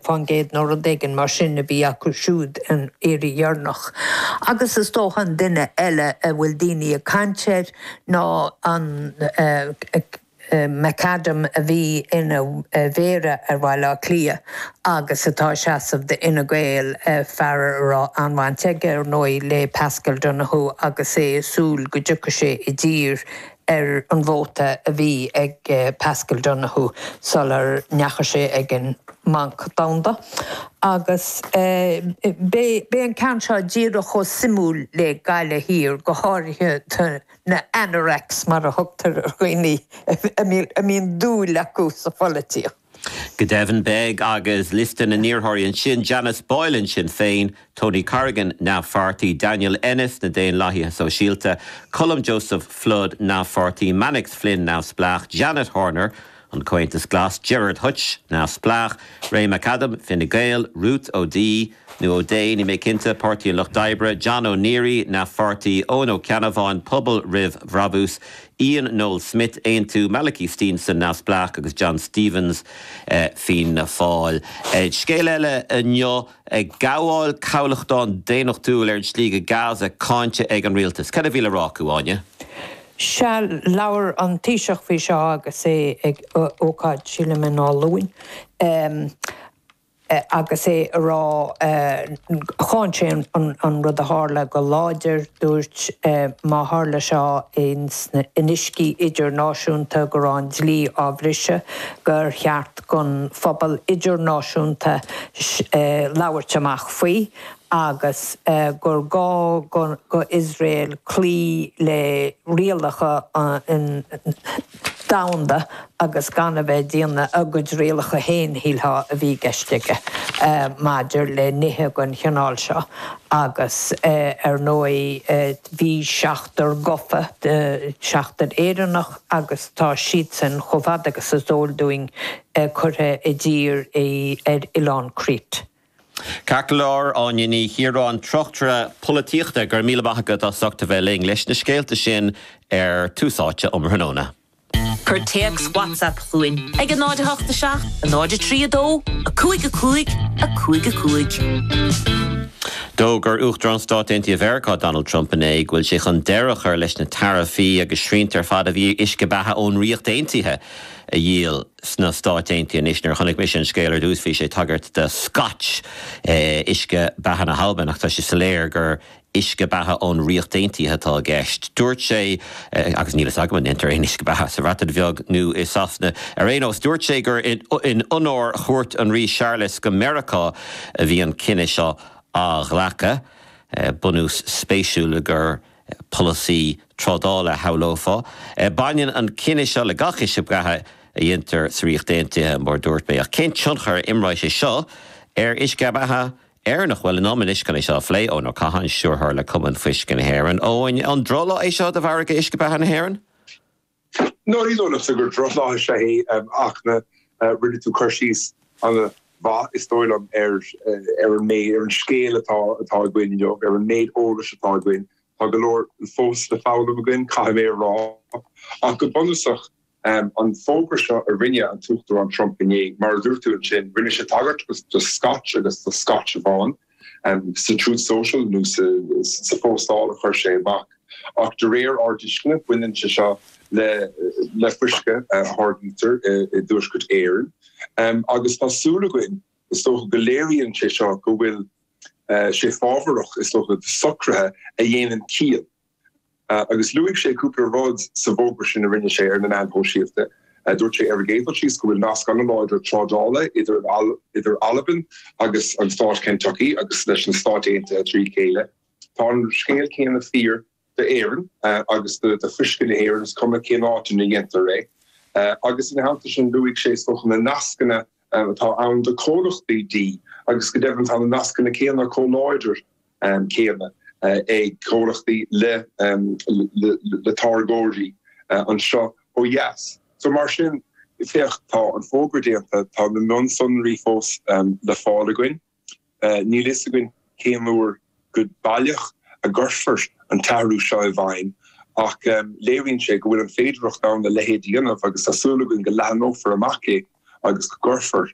fán gcéad nó rud éigin mar sin a bhí acu siúd an iarraidh dheireanach. Agus is dócha an duine eile a bhfuil daoine ag caint air ná Ray McAdam a bhí ina Mhéara ar Bhaile Átha Cliath agus atá ag seasamh d'Fhine Gael, fear a raibh an-bhaint aige, ar ndóigh, le Paschal Donohoe agus é ag súil go dtiocfadh sé i dtír ar an vóta a bhí ag Paschal Donohoe sular ndeachaigh sé ag an mBanc Domhanda agus beidh an ceann seo díreach chomh suimiúil le Gaillimh Thiar, go háirithe do na anoraks, mar a thugtar ar dhaoine a mbíonn dúil acu sa pholaitíocht. Go deimhin, beidh, agus liosta na n-iarrthóirí ansin, Janice Boylan, Sinn Féin, Tony Corrigan, neamh-pháirtí, Daniel Ennis, na Daonlathaithe Sóisialta, Colm Joseph Flood, neamh-pháirtí, Mannix Flynn, neamhspleách, Janet Horner, an Comhaontas Glas, Gerard Hutch, neamhspleách, Ray McAdam, Fine Gael, Ruth O Dea, nó O'Dea, níl mé cinnte, Páirtí an Lucht Oibre, John O'Leary, Neamh-Pháirtí, Eoghan Ó Ceannabháin, Pobal roimh Bhrabús, Ian Noel Smith, Aontú, Malachy Steenson, Neamhspleách, agus John Stephens, Fianna Fáil. Scéal eile inniu, gabháil cabhlacháin daonnachtúil ar an slí go Gaza cáinte ag an rialtas. Cad a bhí le rá acu, Áine? Sea, labhair an Taoiseach faoi seo agus é ag ócáid, sílim, in Áth Luain. agus é ag rá, cháin sé an rud a tharla go láidir, dúirt, má tharla seo in uiscí idirnáisiúnta, go raibh an dlí á bhriseadh, gur cheart don phobal idirnáisiúnta labhairt amach faoi agus gur gá do Iosrael cloí le rialacha an. domhanda agus gan a bheith ag déanamh a gcuid rialacha féin, shílfeá, a bhí i gceist aige maidir le nithe den chineál seo agus ar ndóigh bhí seachtar gafa, seachtar Éireannach agus tá siadsan, chomh fada agus is eol dúinn, curtha i dtír ar oileán Crete. Ceart go leor, Áine Ní Chiaráin, Tráchtaire Polaitíochta. Go raibh míle maith agat as ucht a bheith linn leis na scéalta sin ar Tús Áite um thráthnóna. Cuir téacs WhatsApp chugainn ar 088 032 5 5 5 5. D'fhógair Uachtarán Stáit Aontaithe Mheiriceá Donald Trump inné go bhfuil sé chun deireadh a chur leis na taraifí agus srianta ar fad a bhí ar uisce beatha ón Ríocht Aontaithe a dhíol. sna Stáit Aontaithe anois. Nuair a chonaic mise an scéal ar dtús bhí sé ag tagairt do Scotch, uisce beatha na hAlban, ach tá sé soiléir gur uisce beatha ón Ríocht Aontaithe atá i gceist. Dúirt sé, agus níl fhios agam an ndéantar aon uisce beatha sa Bhreatain Bheag nó i Sasana ar aon nós, dúirt sé gur in onóir chuairt an Rí Charles go Meiriceá a bhí an cinneadh seo á ghlacadh. Bunús spéisiúil gur. polasaí trádála a shamhlófá. Baineann an cinneadh seo le gach uisce beatha a dhéantar sa Ríocht Aontaithe, mar a dúirt mé, ach cén tionchar a imreoidh sé seo ar uisce beatha Éireannach? Bhuel, liom anois chun é seo a phlé, Eoin Ó Catháin, Stiúrthóir le Cumann Fuisce na hÉireann. Eoin, an drochlá é seo do mhargadh uisce beatha na hÉireann? Ná ní dócha gur drochlá é ach rinne tú cur síos ana mhaith is dóigh liom ar an méid, ar an scéal atá atá againn inniu, ar an méid eolas atá againn. Tá go leor fós le foghlaim againn caithfidh mé a rá ach go bunúsach an fógra seo a rinne an tUachtarán Trump inné, mar a dúirt tú ansin, rinne sé tagairt do Scotch agus do Scotch amháin. sa Truth Social nó sa phóstáil a chuir sé amach, ach de réir ár dtuisceana baineann sé seo le fuisce a tháirgítear i dTuaisceart Éireann agus tá súil againn is dócha go léiríonn sé seo go bhfuil sé fábharach is dócha socruithe a dhéanann ciall agus luaigh sé cúpla rud sa bhfógra sin a rinne sé ar na meáin shóisialta. Dúirt sé ar an gcéad dul síos go bhfuil nasc an-láidir trádála idir Albain agus an stát Kentucky agus leis na Stáit Aontaithe trí chéile. Tá an scéal céanna fíor d'Éirinn agus do fuisce na hÉireann, is cuma cén áit ina dhéantar é. Agus ina theannta sin luaigh sé, is dócha, na nascanna a atá ann do chomhlachtaí dí agus go deimhin tá na nascanna céanna, chomh láidir céanna, ag comhlachtaí le le táirgeoirí anseo ó dheas. So mar sin, féach, tá an fógra déanta, tá na mionsonraí fós le fáil againn. Níl fhios againn cén uair go baileach a gcuirfear an t-athrú seo i bhfeidhm ach léiríonn sé go bhfuil an féidearthacht ann a leithéid a dhéanamh agus tá súil againn go leathnófar amach é agus go gcuirfear